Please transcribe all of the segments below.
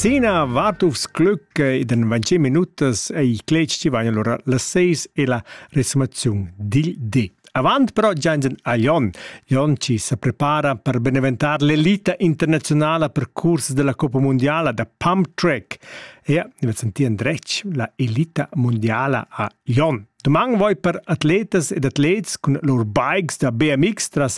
Sena Wartufs Glück ed in 20 minutas ei cletg ti vain allora las 6 e la resumaziun dil di. Avant però Jansen a Lyon. Lyon ci sa prepara per beneventar l'elita internazionala per curs della Coppa Mondiala da pump track. E vi sentì andretg la elita mondiala a Lyon. Domani voi per atletas ed atlets cun lur bikes da BMX tras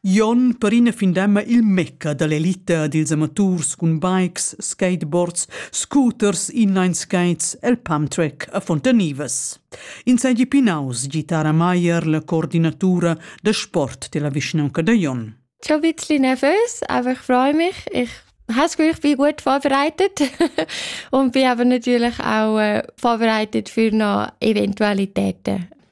Jon perina findemma il mecca dall'elita dils amaturs cun bikes, skateboards, scooters, inline skates el pump track a Fontanivas. Insegi pinaus Gitara Maier, la coordinatura da sport della vischnaunca da Jon. Schon ein bisschen nervös, aber ich freue mich. Ich habe das Gefühl, ich bin gut vorbereitet und bin aber natürlich auch äh, vorbereitet für noch Eventualitäten.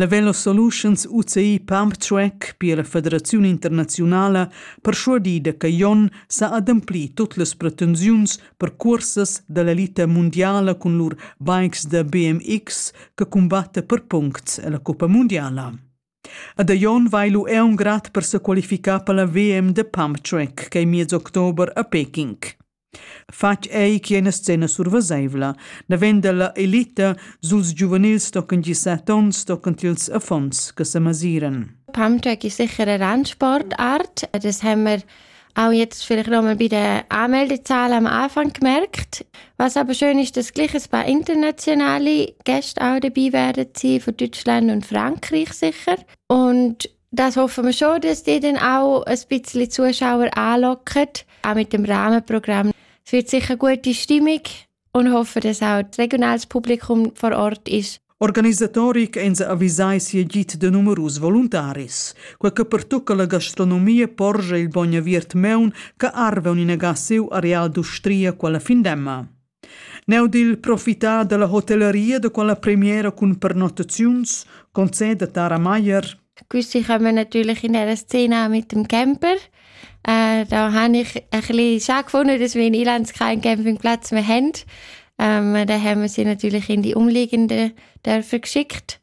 La Velo Solutions UCI Pumptrack pia la federaziun internaziunala perschuadir da che Jon sa ademplir tut las pretensiuns per cursas da l'elita mundiala cun lur bikes da BMX che cumbatta per puncts a la Cuppa mundiala. Ad Jon vai lu è un grad per se qualificar per la VM de Pump Track che è miez october a Peking. Fatg ei che ina scena surveseivla, naven dalla elita suls giuvenils stocken gisat onns stocken ils affons che semasiren. Pamtec ist sicher eine Randsportart. Das haben wir auch jetzt vielleicht nochmal bei der Anmeldezahl am Anfang gemerkt. Was aber schön ist, dass gleich ein paar internationale Gäste auch dabei werden sein, von Deutschland und Frankreich sicher. Und Das hoffen wir schon, dass die dann auch ein bisschen Zuschauer anlocken, auch mit dem Rahmenprogramm. Es wird sicher eine gute Stimmung und hoffen, dass auch das regionales Publikum vor Ort ist. Organisatori ch'eins avisai sia git de numerus voluntaris. Quei che pertucca la gastronomia porge il bogn aviert meun che arve un inaga siu areal d'ustria quella findemma. Neu dil profitar dalla hotellaria da quella premiera cun pernottaziuns conceda Tara Meier. Questi kommen natürlich in einer Szene mit dem Camper. Äh, da habe ich ein bisschen schade gefunden, dass wir in Irland keinen Campingplatz mehr haben. Ähm, da haben wir sie natürlich in die Umliegenden dürfen geschickt.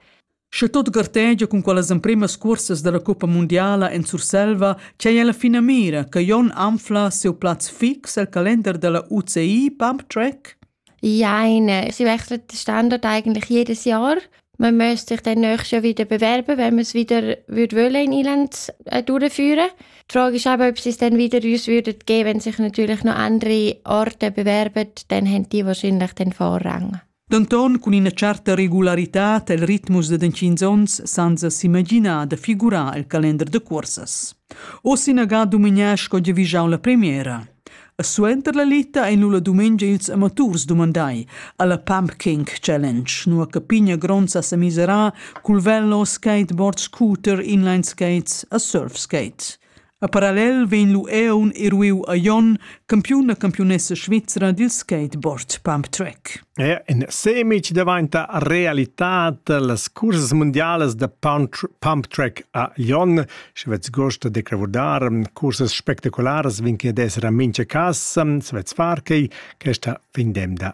Sche tot gartegia cun quellas empremas cursas dalla cuppa mundiala en Surselva, c'ei ella finamira che Jon anfla siu plaz fix el calender dalla UCI Pump Track? Jein, sie wechseln den Standort eigentlich jedes Jahr. Man müsste sich dann nächstes Jahr wieder bewerben, wenn man es wieder würde wollen in Irland äh, durchführen. Die Frage ist aber, ob sie es dann wieder uns würden geben, wenn sich natürlich noch andere Orte bewerben, dann haben die wahrscheinlich den Vorrang. Denton cun ina certa regularitad el ritmus da tschient onns senza s'imaginar da figurar el calender da cursas. Oz inaga dumignar sco giavischau la premiera. E suenter la lita ein lu la dumengia ils amaturs dumandai alla Pumpkin Challenge, nua che pigna gronza sa misera cul vello, skateboard, scooter, inline skates e surf skate. A parallel vegn l'ueun eruiu a Jon, campiun e campiunessa svizra dil skateboard pump track. E in semic daventa realitad las cursas mundialas da pump track a Jon. Sche vets gosto de cravurdar cursas spectacularas vin che d'essere a mincha cas, se vets far quei, questa fin dem da